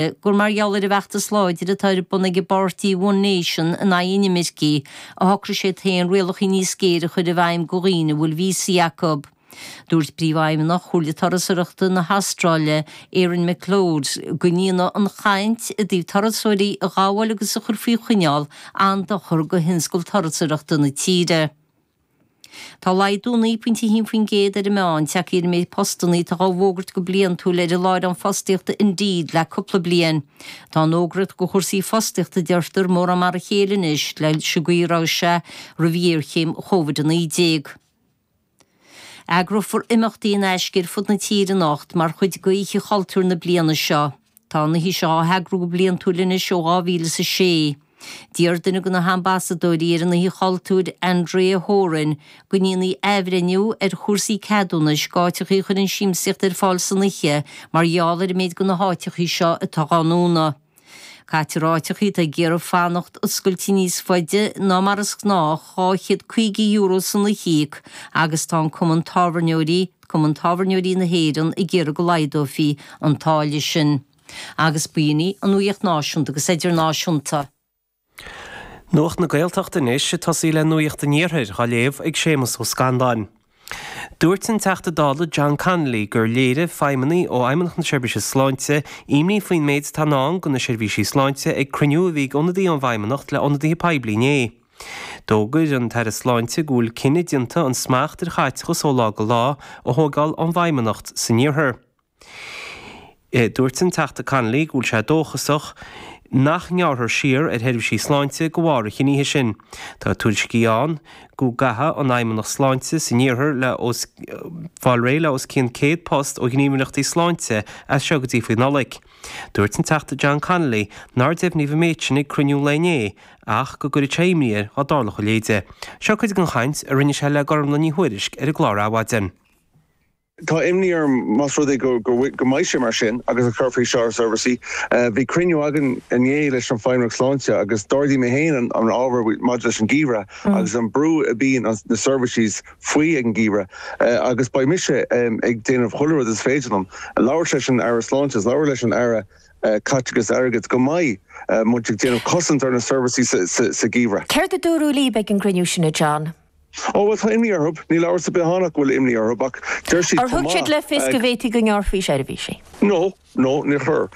gur mar gheall ar an bhfeachtas láidir atá ar bun ag an bpáirtí One Nation in aghaidh inimircigh a shocraigh sé féin rialacha níos géire a chur i bhfeidhm go dhaoine a bhfuil víosaí acu. Dúirt príomhfheidhmeannach Chomhairle Turasóireachta na hAstráile, Erin McLeod, go ndéanadh an chaint i dtaobh turasóirí a ghabháil agus a chur faoi choinneáil an-dochar do thionscal turasóireachta na tíre. Tá laghdú 9.1% ar an meán, deirtear, i méid postanna atá á bhfógairt go bliantúil ar an láithreán fostaíochta Indeed le cúpla bliain. Tá an fhógraíocht do chúrsaí fostaíochta deirtear mórán mar a chéile anois leis an gcaoi a raibh sé roimh ghéarchéim Covid-19. Eagrófar imeachtaí in aisce ar fud na tíre anocht mar chuid d'Oíche Chultúir na bliana seo. Tá an oíche seo á heagrú go bliantúil anois ó 2006. D'iarr duine de na hambasadóirí ar an Oíche Chultúir, Andrea Horan, go ndéanfaí athbhreithniú ar chúrsaí ceadúnais d'áiteacha a chuireann siamsaíocht ar fáil san oíche mar gheall ar an méid de na háiteacha seo atá á ndúnadh. Gearrtar ar áiteacha atá ag iarraidh fanacht oscailte níos faide ná mar is gnách, €250 san oíche, agus tá an cumann tábhairneoirí, Cumann Tábhairneoirí na hÉireann ag iarraidh go laghdófaí an táille sin. Agus b'in í an nuaíocht náisiúnta agus idirnáisiúnta. Nuacht na Gaeltachta anois ag tosú le nuaíocht an iarthair dhá léamh ag Séamas Ó Scanláin. Dúirt an Teachta Dála John Connolly gur léirigh feidhmeannaigh ó Fheidhmeannacht na Seirbhíse Sláinte imní faoin méid atá in ndán go na seirbhísí sláinte ag cruinniú a bhí ag ionadaithe ón bhFeidhmeannacht le ionadaithe poiblí inné. D'fhógair an tAire Sláinte go bhfuil cinneadh déanta an smacht ar chaiteachas ó lá go lá a thógáil ón bhFeidhmeannacht san iarthar. Dúirt an Teachta Connolly go bhfuil sé dóchasach nach ngearrfar siar ar sheirbhísí sláinte de bharr an chinnidh sin. Tá tuairiscí ann go gcaithfidh an Fheidhmeannacht Sláinte san iarthar le fáil réidh le os cionn 100 post ó ghníomhaireachtaí sláinte as seo go dtí faoi Nollaig. Dúirt an Teachta John Connolly nár deimhníodh an méid sin ag cruinniú lae inné ach go gcuirfeadh sé imní air dá dtarlódh a leithéide. Seo cuid den chaint a rinne sé le Gormfhlaith Ní Thuairisg ar an gclár Adhmhaidin. Tá imní orm más rud é go mbeidh sé mar sin agus go gcuirfeadh sé seo ar seirbhísí. Bhí cruinniú againn inné leis an Fheidhmeannacht Sláinte agus d'ardaigh mé féin an ábhar maidir leis an geimhreadh agus an brú a bhíonn na seirbhísí faoi ag an geimhreadh agus beidh mise ag déanamh chuile rud is féidir liom. Labhairt leis an Aire Sláinte is labhairt leis an Aire Caiteachais Airgid go mbeidh muid ag déanamh cosaint ar na seirbhísí sa gheimhreadh. Céard a dúradh líb ag an gcruinniú sin, a John? Ó, bhuel, tá imní orthu. Níl amhras ar bith ann ach go bhfuil imní orthu ach deir siad chomh maith. Ar thug siad le fios go bhféadfaí go ngearrfaí seirbhísí? No, Nó níor chuir.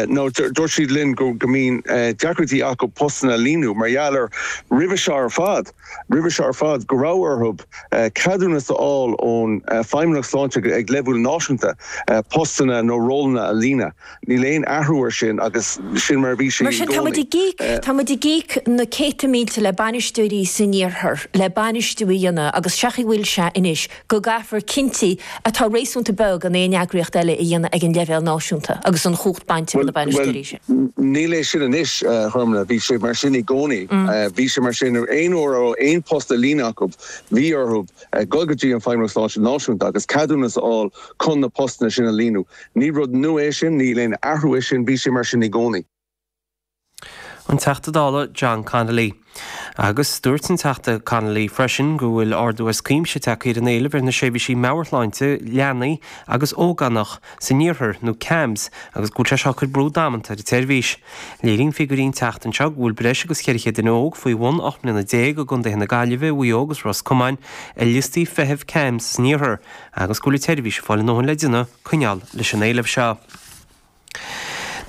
Nó dúirt siad linn go mbíonn deacrachtaí acu postanna a líonadh mar gheall ar, roimhe seo ar fad, roimhe seo ar fad, go raibh orthu ceadúnas a fháil ón Feidhmeannacht Sláinte ag leibhéal náisiúnta postanna nó rólanna a líonadh. Níl aon athrú air sin agus sin mar a bhí sé i gcónaí. Mar sin, tá muid ag íoc, tá muid ag íoc na céadta mílte le bainisteoirí san iarthar le bainistiú a dhéanamh agus seo chaoi a bhfuil sé anois, go gcaithfear cinntí atá réasúnta beag in aon eagraíocht eile a dhéanamh ag an leibhéal náisiúnta agus an chumhacht bainte de na bainisteoirí sin. Bhuel, níl é sin anois, a Ghormfhlaith, bhí sé mar sin i gcónaí. Bhí sé mar sin aon uair a raibh aon post le líonadh acu, bhí orthu dul go dtí an Fheidhmeannacht Sláinte Náisiúnta agus ceadúnas a fháil chun na postanna sin a líonadh. Ní rud nua é sin, ní aon athrú é sin, bhí sé mar sin i gcónaí. an Teachta Dála John Connolly. Agus dúirt an Teachta Connolly freisin go bhfuil ardú as cuimse tagtha ar an éileamh ar na seirbhísí meabhairshláinte leanaí agus ógánach san iarthar, nó CAMHS, agus go bhfuil sé seo ag cur brú damanta ar an tseirbhís. Léiríonn figiúirí an tseachtain seo go bhfuil breis agus 400 duine óg faoi bhun 18 mbliana i gcontaetha na Gaillimhe, Mhaigh Eo agus Ros Comáin ar liostaí feithimh CAMHS san iarthar agus go bhfuil an tseirbhís ag fáil a dóthain le déanamh coinneáil leis an éileamh seo.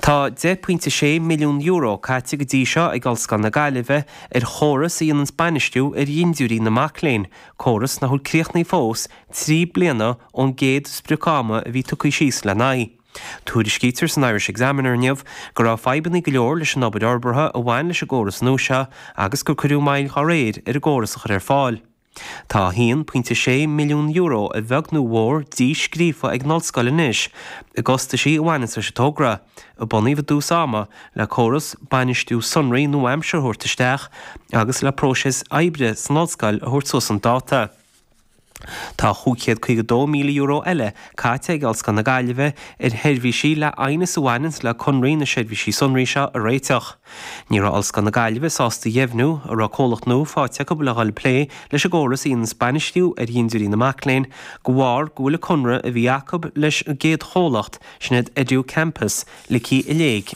Tá €10.6 milliún caite go dtí seo ag Ollscoil na Gaillimhe ar chóras a dhéananns bainistiú ar dhintiúirí na mac léinn, córas nach bhfuil críochnaithe fós, trí bliana ón gcéad sprioc ama a bhí leagtha síos lena aghaidh. Tuairiscítear san Irish Examiner inniu go raibh fadhbanna go leor leis an obair fhorbartha a bhain leis an gcóras nua seo agus gur cuireadh moill dhá réir ar an gcóras a chur ar fáil. Tá €1.6 milliún a bheag nó a mhór díscríofa ag an Ollscoil anois i gcostaisí a bhaineas leis an togra, a bunaíodh i dtús ama le córas bainistiú sonraí nua-aimseartha a thabhairt isteach agus le próiseas oibre san Ollscoil a thabhairt suas chun dáta. Tá €552,000 eile caite ag Ollscoil na Gaillimhe ar sheirbhísí le aighneas a bhaineas le conraí na seirbhísí sonraí seo a réiteach. Ní raibh Ollscoil na Gaillimhe sásta a dheimhniú an raibh comhlacht nua faighte acu le dhul ag plé leis an gcóras a dhéananns bainistiú ar dhintiúirí na mac léinn de bharr go bhfuil an conradh a bhí acu leis an gcéad chomhlacht, sin iad EduCampus, ligthe i léig.